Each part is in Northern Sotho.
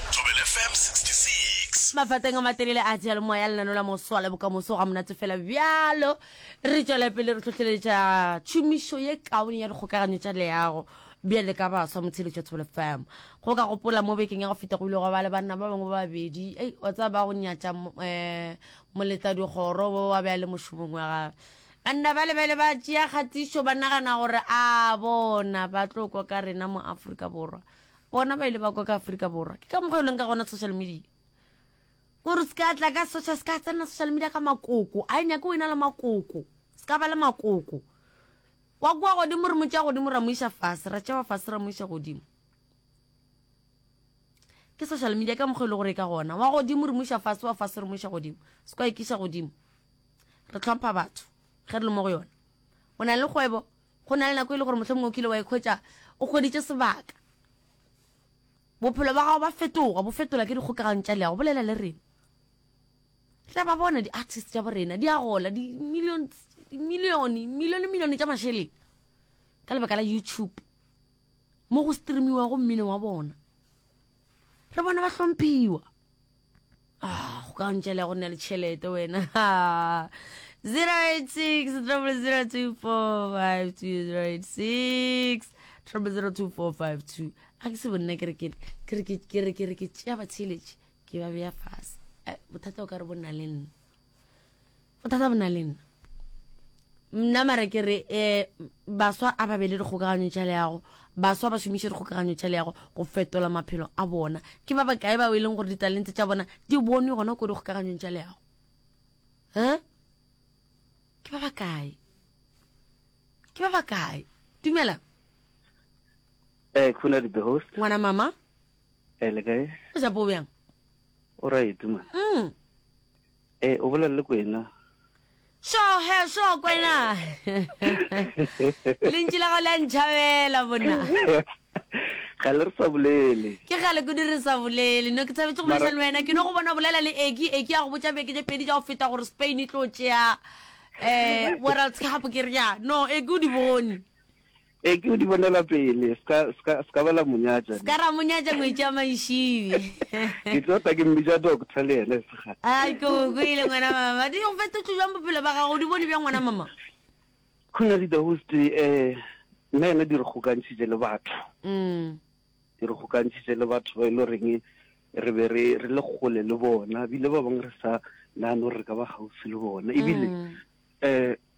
Thobela FM 66. Mafateng a matelele a diyalemoya, lenano la Moso le Bokamoso ga monate fela bjalo. Re tšwela pele re hlohleletša tšhomišo ye kaone ya dikgokaganyo tša leago bjale ka baswa mo tsheletšo ya Thobela FM. Go ka gopola mo bekeng ya go feta go ile gwa ba le banna ba bangwe ba babedi, ei, wa tseba ba go nyatša um moletladikgoro wo wa be a le mošomong wa gagwe. Banna bale ba ile ba tšea kgatišo ba nagana gore a bona ba tlo kwa ka rena mo Afrika Borwa. Bona ba ile ba kwa ka Afrika Borwa. Ke ka mokgwa e leng ka gona social media. Gore se ka tla ka social, se ka tsena social media ka makoko. A e nyake o ena le makoko. Se ka ba le makoko. Wa kwa godimo re mo tšea godimo ra mo iša fase, ra tšewa fase ra mo iša godimo. Ke social media ka mokgwa e le gore ka gona. Wa godimo re mo iša fase, wa fase re mo iša godimo. Se kwa ikiša godimo. Re tlhompha batho ge re le mo go yona. O na le kgwebo, Go na le nako e le gore mohlomongwe o kile wa ikhwetša o hweditše sebaka. Bophelo ba gago ba fetoga, bo fetola ke dikgokagano tša leago. Bolela le rena. Tla ba bona di-artist tša bo rena, di a gola, di-million, di-million, million, million tša mašeleng ka lebaka la YouTube mo go streamiwago mmino wa bona. Re bona ba hlomphiwa. go ka ntšele go nna le tšhelete wena 086 002452086 0024520 a ke se bonna ke re ke re ke re ke tšea batheletše ke ba beya fase eh, bothata o ka re bonna le nna bothata bo na le nna mna mara ke re um baswa a ba be le dikgokaganyo tša leago baswa ba šomiše dikgokaganyo tša leago go fetola maphelo a bona ke ba bakae bao e leng gore ditalente tša bona di bonwe gona ko dikgokaganyong tša leago um ke ba bakae ke ba bakae dumela eh khona di the host ngwana mama eh le kae o ja bo bjang o right man mm E, o bolela le kwena. Sho, he, sho, kwena. Lentši la gago le a ntšhabela, bona. Ga le re sa bolele. Ke gale kudu re sa bolele. No, ke thabetše go bolediša le wena. Ke no go bona bolela le Eki. Eki a go botša beke tše pedi tša go feta gore Spain e tlo tšea um World Cup, ke re ya. No, Eki o di bone. Ee, ke go di bonela pele, se ka, se ka, se ka ba la mo nyatša. Se ka ra mo nyatša ngwetši ya Maišibi. Ke tlo tla ke mmitša doctor le yena sega. A, ke go kwele ngwana mama. Di go fetotšo bjang bophelo ba gago, o di bone bjang ngwana mama? Khona di the host, eh, nna yena di re kgokantšhitše le batho. Mm. Di re kgokantšhitše le batho ba e lo reng re be re re le kgole le bona bile ba bangwe re sa nano re ka ba gaufi le bona ebile mm. eh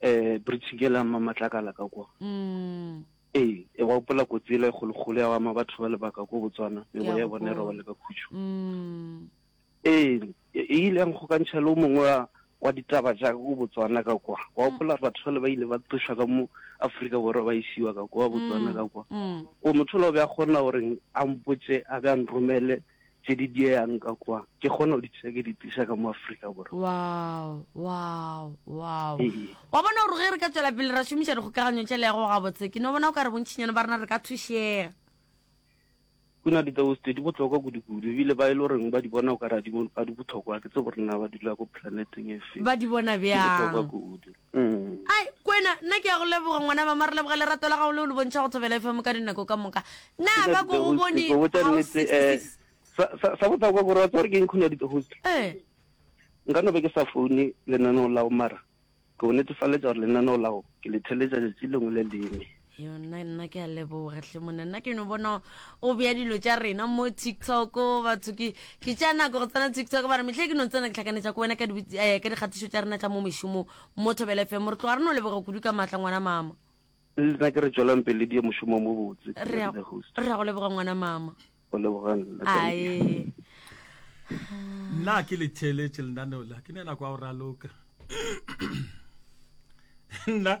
eh bridge ke la mamatlakala ka kwa mm. ee e wa gopola kotsi ele e kgolokgolo ya ama batho ba lebaka ko botswana e bo ya bona e robale ka khutšo mm. ee e, e ile yang kgokantšha le o mongwe wa wa ditaba jaaka ko botswana ka kwa wa gopola batho le ba ile ba tlošwa ka mo aforika borwa ba isiwa ka kwa botswana ka kwa o motho le o be a kgona gore a mpotse a be a nromele tše di dieyang ka kwa ke kgona go di tisa ke di tisa ka mo Afrika Borwa. Wow, wow, wow. Ee. Wa bona gore ge re ka tswela pele ra šomiša dikgokaganyo tše lego gabotse, ke no bona o ka re bontšinyana ba rena re ka thušega. Kuna ditabo tse di bohlokwa kudu-kudu ebile ba e le reng ba di bona o ka re ga di bohlokwa, ke tse gore na ba dula ko planeteng e feng. Ba di bona bjang? Di bohlokwa kudu. Mm. Ai, kwena, nna ke ya go leboga ngwana mama, re leboga lerato la gago leo le bontšha go Thobela FM ka dinako ka moka. Na Ke sa ba ko go ditogo, bone Steve, go botša House nnete, eh, 66? sa- sa- sa bohlokwa gore wa tseba gore ke eng khona ditogo tse. Eh, nka no be ke sa foune lenaneo lao mara ke go netefaletša gore lenaneo lao ke le theletša letši lengwe le lengwe yo nna nna ke a leboga hle monna nna ke no bona o bea dilo tša rena mo tiktok batho ke ke tša nako go tsena tiktok ba re metlhe ke no tsena ke tlhakanetša ko wena ka eh, dikgatišo tša rena tša mo mešomo mo thobela fm re tloga re no leboga kudu ka maatla ngwana mama nna ke re tswelang pele di ye mošomo mo botse re ya go leboga ngwana mama o lebogang ae nna ke le theletše lenaneo la ke ne nako ya go raloka nna